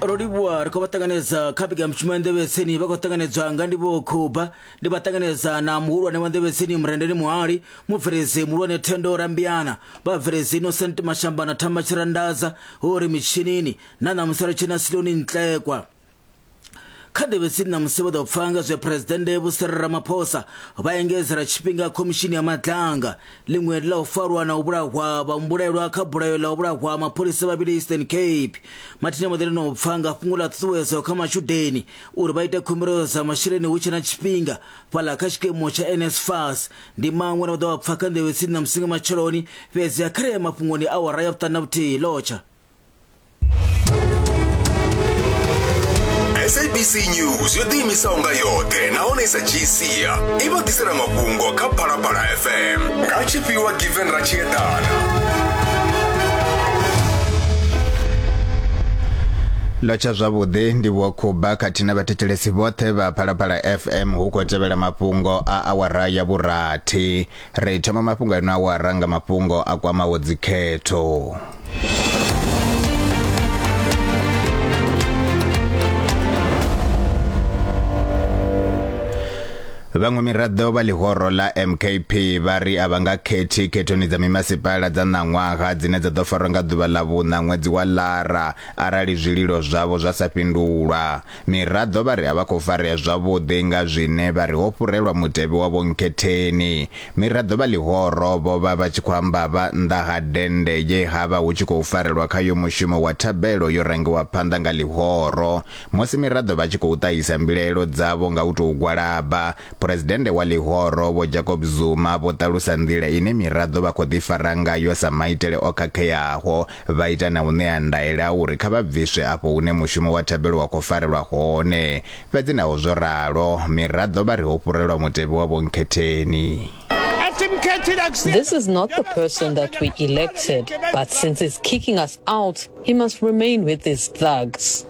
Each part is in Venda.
ro livhuwa ri khou vha ṱanganedza kha piga mushumo ya nḓevhetsini vha khou ṱanganedzwa nga ndi vho khuba ndi vha ṱanganedza na muhulwane wa nḓevhetsini murendeni muhali mubveledzi muhulwane thendo rambiana vhabveledzi innocent mashamba na thamba tshirandaza ho ri mitshinini na ṋamusi ri tshina siloni ntlekwa kha ḓi vhe tsini na musi vho ḓo pfa nga zwe phuresidennde vho siri ramaphosa vha engedzela tshifhinga khomishini ya madlanga ḽiṅwe ḽa u farwa na u vhulahwa vhambulelwa kha bulayo ḽa u vhulahwa mapholisa vhavhili eastern cape mathina vho ḓi no pfa nga fhungo ḽa ṱhuṱhuwedzo kha matshudeni uri vha ite khumbelo dza masheleni hu tshe na tshifhinga fhaḽa kha tshikimu tsha nsfas ndi maṅwe na vho ḓo vha pfa kha nḓevhe tsini na musi nga matsheloni fhedzi a khareye mafhungoni awara ya vhuṱanu na vhuthihi lotsha sabc news yo ḓiimisaho nga yoṱhe nahone sa gcia i vha ḓisela mafhungo kha phalaphala fm nga tshifhiwa given ra tshi eḓana ḽo tsha zwavhuḓi ndi vho khuba khathihi na vhathetshelesi vhoṱhe vha phalaphala fm hu khou tevhela mafhungo a awara ya vhurathi Ri thoma mafhungo ano awara nga mafhungo a kwamaho dzikhetho. Vhaṅwe miraḓo vha ḽihoro ḽa MKP vha ri a vha nga khethi khethoni dza mimasipala dza ṋaṅwaha dzine dza ḓo farwa nga ḓuvha ḽa vhuṋa ṅwedzi wa Lara arali zwililo zwavho zwa sa fhindulwa. Miraḓo vha ri a vha khou farea zwavhuḓi nga zwine vha ri ho fhurelwa mutevhe wa vhonkhetheni. Miraḓo vha ḽihoro vho vha vha tshi khou amba vha nnḓa ha dennde ye ha vha hu tshi khou farelwa khayo mushumo wa thabelo yo rangiwa phanḓa nga ḽihoro. Musi miraḓo vha tshi khou ṱahisa mbilaelo dzavho nga u tou gwalaba, Phresidennde wa ḽihoro Vho Jacob Zuma vho ṱalusa nḓila ine miraḓo vha khou ḓifara ngayo sa maitele o khakheaho Vha ita na u ṋea ndaela ya uri kha vha bviswe afho hune mushumo wa thabelo wa khou farelwa hone. Fhedzi naho zwo ralo, miraḓo vha ri ho fhurelwa mutevhe wa Vho Nkhetheni. This is not the person that we elected, but since he's kicking us out, he must remain with these thugs.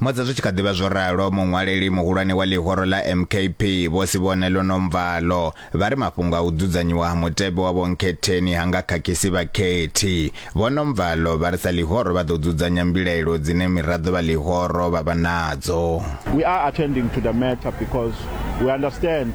Musi zwi tshi kha ḓi vha zwo ralo, muṅwaleli muhulwane wa ḽihoro ḽa MKP, Vho Sibonelo Nomvalo, vha ri mafhungo a u dzudzanyiwa ha mutevhe wa vhonkhetheni ha nga khakhisi vhakhethi. Vho Nomvalo vha ri sa ḽihoro vha ḓo dzudzanya mbilaelo dzine miraḓo vha ḽihoro vha vha nadzo. We are attending to the matter because we understand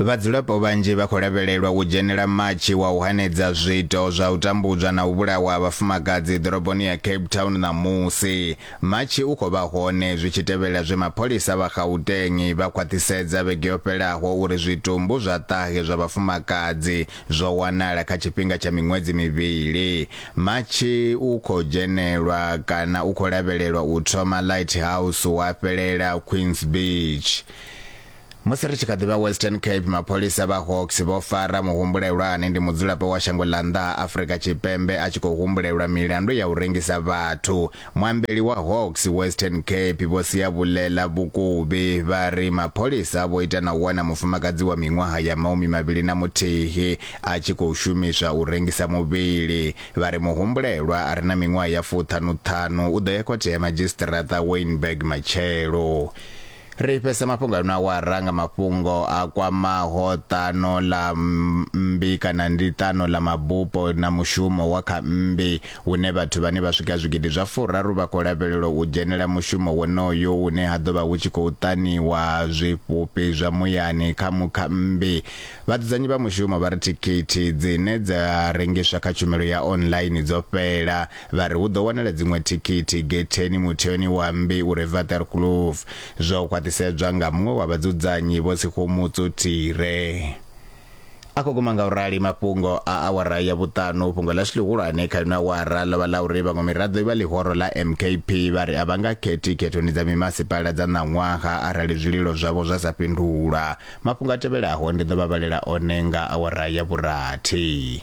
Vhadzulapo vhanzhi vha khou lavhelelwa u dzhenela matshi wa u hanedza zwiito zwa u tambudzwa na u vhulawa ha vhafumakadzi ḓoroboni ya Cape Town ṋamusi. Matshi u khou vha hone zwi tshi tevhela zwe mapholisa vha Gauteng vha khwaṱhisedza vhege yo fhelaho uri zwitumbu zwa ṱahe zwa vhafumakadzi zwo wanala kha tshifhinga tsha miṅwedzi mivhili. Matshi u khou dzhenelwa kana u khou lavhelelwa u thoma Lighthouse wa fhelela Queens Beach. Musi ri tshi kha ḓivha Western Cape, mapholisa vha Hawks vho fara muhumbulelwa ane ndi mudzulapo wa shango ḽa nnḓa ha Afrika Tshipembe a tshi khou humbulelwa milandu ya u rengisa vhathu. Muambeli wa Hawks Western Cape Vho Siyabulela Vhukuvhi vha ri mapholisa vho ita na u wana mufumakadzi wa miṅwaha ya maumi mavhili na muthihi a tshi khou shumiswa u rengisa muvhili. Vha ri muhumbulelwa a re na miṅwaha ya fuṱhanu-ṱhanu u ḓo ya khothe ya madzhisiṱiraṱa Wynberg matshelo. ri fhese mafhungo ano awara nga mafhungo a kwamaho ṱano ḽa mmbi kana ndi ṱano ḽa mabupo na mushumo wa kha mmbi hune vhathu vhane vha swika zwigidi zwa furaru vha khou lavhelelwa u dzhenela mushumo wonoyo une ha ḓovha hu tshi khou ṱaniwa zwifhufhi zwa muyani kha mukha mmbi vhadzudzanyi vha mushumo vha ri thikhithi dzine dza rengiswa kha tshumelo ya online dzo fhela Vha ri hu ḓo wanala dziṅwe thikhithi getheni mutheoni wa mmbi u re Waterkloof, zwo khwaṱhisedzwa nga muṅwe wa vhadzudzanyi Vho Sekgomotso Tire. A khou guma nga u rali mafhungo a awara ya vhuṱanu. Fhungo ḽashu ḽihulwane kha ino awara ḽo vha ḽa uri vhaṅwe miraḓo vha ḽihoro ḽa MKP vha ri a vha nga khethi khethoni dza mimasipala dza ṋaṅwaha arali zwililo zwavho zwa sa fhindulwa. Mafhungo a tevhelaho ndi ḓo vha vhalela one nga awara ya vhurathi.